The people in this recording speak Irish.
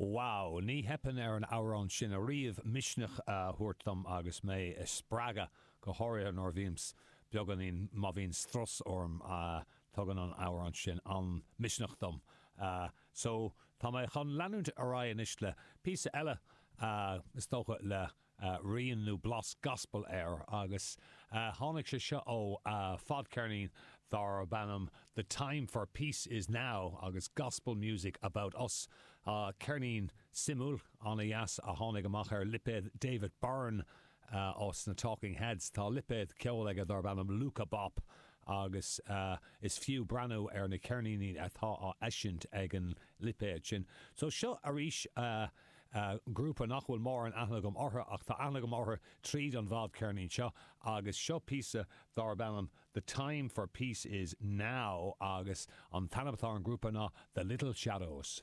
Wow! Ní theipeann ar an amhrán sin ariamh misneach a thabhairt dom agus mé a spreagadh, go háirithe nuair a bhímse beagáinín, má bhíonn strus orm, tugann an amhrán sin an-misneach dom. So, tá mé chun leanúint ar aghaidh anois le píosa eile, is dócha le rian nó blas gospel air agus tháinig sé seo ó fadcheirnín darb ainm The Time for Peace is Now agus Gospel Music About Us, ceirnín suimiúil an-dheas a tháinig amach ar lipéad David Byrne as na Talking Heads. Tá lipéad ceoil aige darb ainm Luaka Bop agus is fiú breathnú ar na ceirníní atá á eisiúint ag an lipéad sin. So seo arís. Grúpa nach bhfuil mórán aithne agam orthu ach tá aithne agam orthu tríd an bhfadcheirnín seo agus seo píosa darb ainm The Time for Peace Is Now agus an t-ainm atá ar an grúpa ná The Little Shadows.